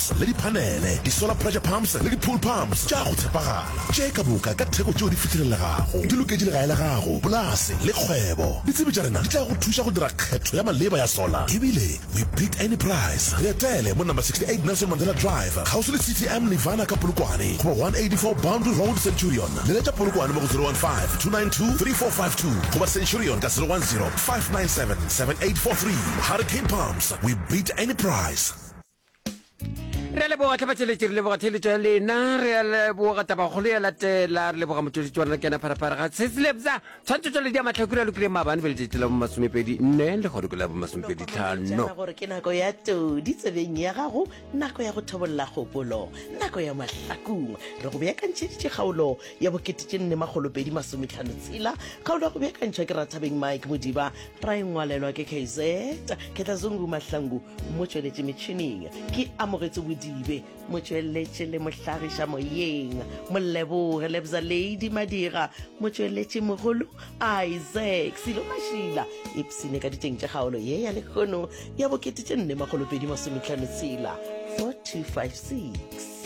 Pumps le diphanele, di-solar pressure pumps le di-pool pumps tša go tshepagala tše ka moka ka theko tšeo di fihlelelegago, di loketše legae la gago, polase le kgwebo. Ditsebi tša rena di tla go thuša go dira kgetho ya maleba ya solar. Ebile we beat any price! Re etele mo Number 68 Nelson Mandela Drive, kgauswi le City Am Nirvana ka Polokwane, goba 184 Boundary Road, Centurion. Leletša Polokwane mo go 015-292-3452 goba Centurion ka 010-597-7843. Hurricane Pumps, we beat any price! re a leboga tlhabatšeletše re leboga theletšo ya lena re a leboga tabakgolo ya latela re leboga motšweletši wa rena kena pharapara ga seselebza tshwantsho tšwale di a matlhakura lokile maabane be letšatši la bomasomepedi nne le gore ke la bomasomepedi tlhano gore ke nako ya todi tsebeng ya gago nako ya go thobolola kgopolo nako ya mahlakong re go beakantšheditše kgaolo ya bokete tše nne magolopedi masometlhano tshela kgaolo ya go beakantšhwa ke rathabeng mike modiba Ra e ngwalelwa ke KZ Khetlazungu Mahlangu, motšweletši metšhining, ke Amogetso Bodibe, motšweletši le mohlagiša moyeng, Moleboge Lebza Lady Madira, motšweletši mogolo, Isaac Silo Mashila, ipsine ka diteng tša kgaolo ye ya lekgono ya bo kete tše nne makgolo pedi masometlhano tshela 4256.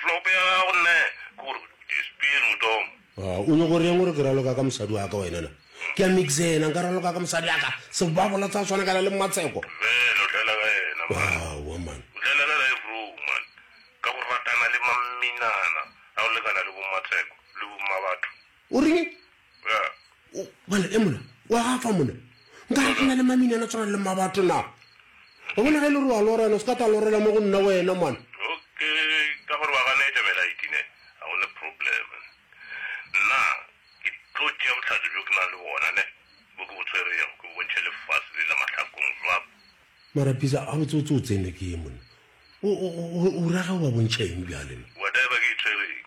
Hlope ya gago nne kor dispir motom. O nyoko reng gore ke raloka ka mosadi wa ka wena na? Ke a mixena nka raloka ka mosadi ya ka sebabola tsa swana kana le mmatseko. Dumela o tlela ka yena man. Aowa man. O tlela ka live row man ka go ratana le mamminana a go lekana le bo mmatseko le bo mmabatho. O reng? bana e mona wa gafa mona nka re ke na le maminana tshwana le mabatho na o bona ge e le gore wa lorena o se ka tla lorela mo go nna wena mane ka gore ba gane etamela itine ga gone problem nna ke tlo tšea botlhatso bjo ke na le bona ne bo ke bo tshwerego ke bontšhe lefase le la mahlakong jwa mara pisa a botse o tse o tsene ke ye mona o rage o ba bontšha eng bjaleno whatever ke e tshwereng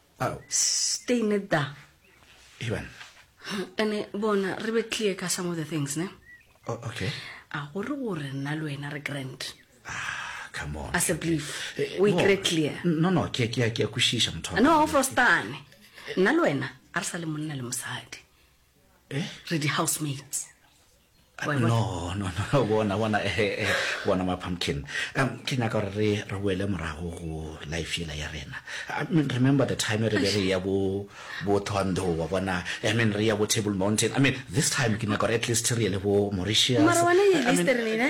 Ao. Stay net da. Hey banna. Ene bona re be clear ka some of the things ne. Oh, okay. A gore gore nna le wena re grand. Ah, come on. As a belief. Eh, we no. get clear. No no, ke ke ke a kwishisha motho. No, frostane. Nna le wena a re sa le monna le mosadi. eh? re di-housemates no no no bona bona eh, eh, eh bona ma pumpkin um ke nyaka gore re re boele morago go life ela ya rena i mean remember the time re be re ya bo bo thondo wa bona i mean re ya bo table mountain i mean this time ke nyaka gore at least re ye le bo mauritius mara wena ye listerlene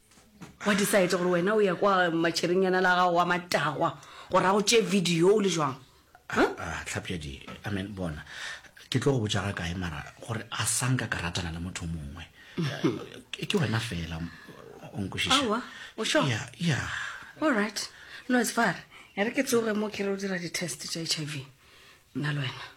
wa decide gore wena o ya kwa matšherinyana la gago wa matagwa gore a go tšee video o le jwang Ah, tlhapjadi amen bona ke tlo go botša ga kae mara gore a sanka ka ratana le motho mongwe Eh, ke wena fela o nkwešiša Aowa, o sure? Yeah, yeah. all right no it's far e re ke tsoge mo ke re o dira di-test tša h i v nna le wena